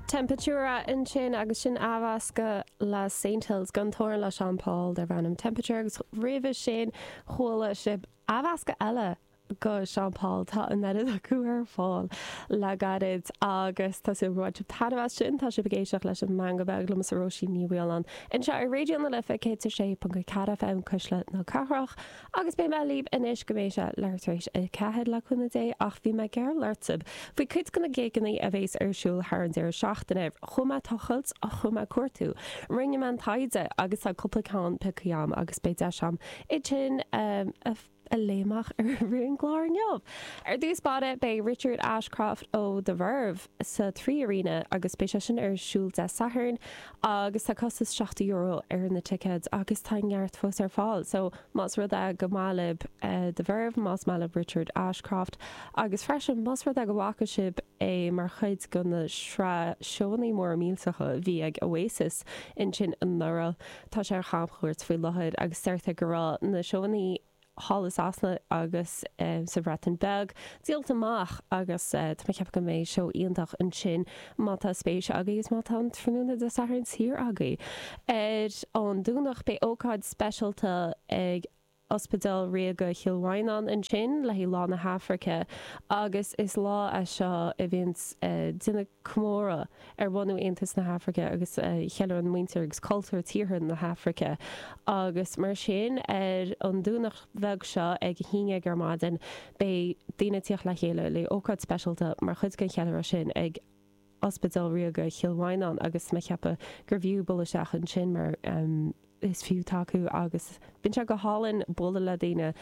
Temperature ansin agus sin athmheascadh le Saint Hills gan torann le Sean Paul darb ainm Temperature agus roimhe sin chuala sibh athmheascadh eile de Sean Paul. Tá an oiread acu ar fáil le gairid agus tá súil go bhfuair sibh taitneamh as sin. Tá sibh ag éisteacht leis an Meangadh Beag liomsa Róisín Ní Mhaoláin anseo ar Raidió na Life 106.4 FM Cuisle na Cathrach. Agus beidh mé libh anois go mbeidh sé leath tar éis a ceathair le cúnamh Dé, ach bhí mé ag gealladh daoibh faoi cuid de na gigeannaí a bhéas ar siúl thar an deireadh seachtaine. Chuaigh mé ag tochailt, chuaigh mé ag cuartú, rinne mé an taighde agus tá cúpla ceann piocthaí agam agus beidh deis agam iad sin a léamh amach ar an gclár inniu. Ar dtús báire beidh Richard Ashcroft ó The Verve. sa 3Arena agus beidh sé sin ar siúl Dé Sathairn agus tá costas seachtó euro ar na ticéid agus tá neart fós ar fáil so más rud é go mba mhaith libh The Verve, más maith libh Richard Ashcroft agus freisin más rud é go bhfaca sibh é mar chuid de na sraith seónnaí móra millteacha a bhí ag Oasis ansin anuraidh, tá sé ar chamchuairt faoi láthair agus deirtear go raibh na seónnaí. thall i Sasana agus sa Bhreatain Bheag, díolt amach agus tá mé ag ceapadh go mbeidh seó iontach ansin má tá spéis agaibh agus má tá an tráthnóna Dé Sathairn saor agaibh. Ar an Domhnach beidh ócáid speisialta ag Ospidéal Ríoga Chill Mhaighneán ansin le haghaidh Lá na hAfraice agus is lá é seo a bhíonns ag déanamh comóradh, ar bhunú Aontas na hAfraice agus ceiliúrann muintir agus cultúr tíortha na hAfraice agus mar sin ar an Domhnach beag seo ag a haon dhéag ar maidin beidh daoine ag tíocht le chéile le ócáid speisialta mar chuid den cheiliúradh sin ag Ospidéal Ríoga Chill Mhaighneán agus mé ag ceapadh gurbh fhiú bualadh isteach ansin mar is fiú tacú agus bíonn sé go hálainn bualadh le daoine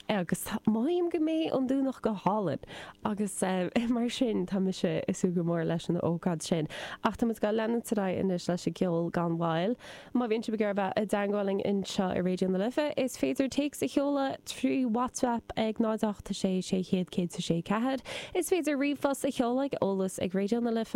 agus mothaím go mbeidh an Domhnach go hálainn agus mar sin tá mise ag súil go mór leis an ócáid sin ach tá muid ag leanúint ar aghaidh anois leis an gceol gan mhoill. Má bhíonn sibh ag iarraidh bheith i dteangmháil linn anseo i Raidió na Life is féidir téacs a sheoladh trí Whatsapp ag 0 8 6 600 106 4. Is féidir ríomhphost a sheoladh ag eolas ag Raidió na Life,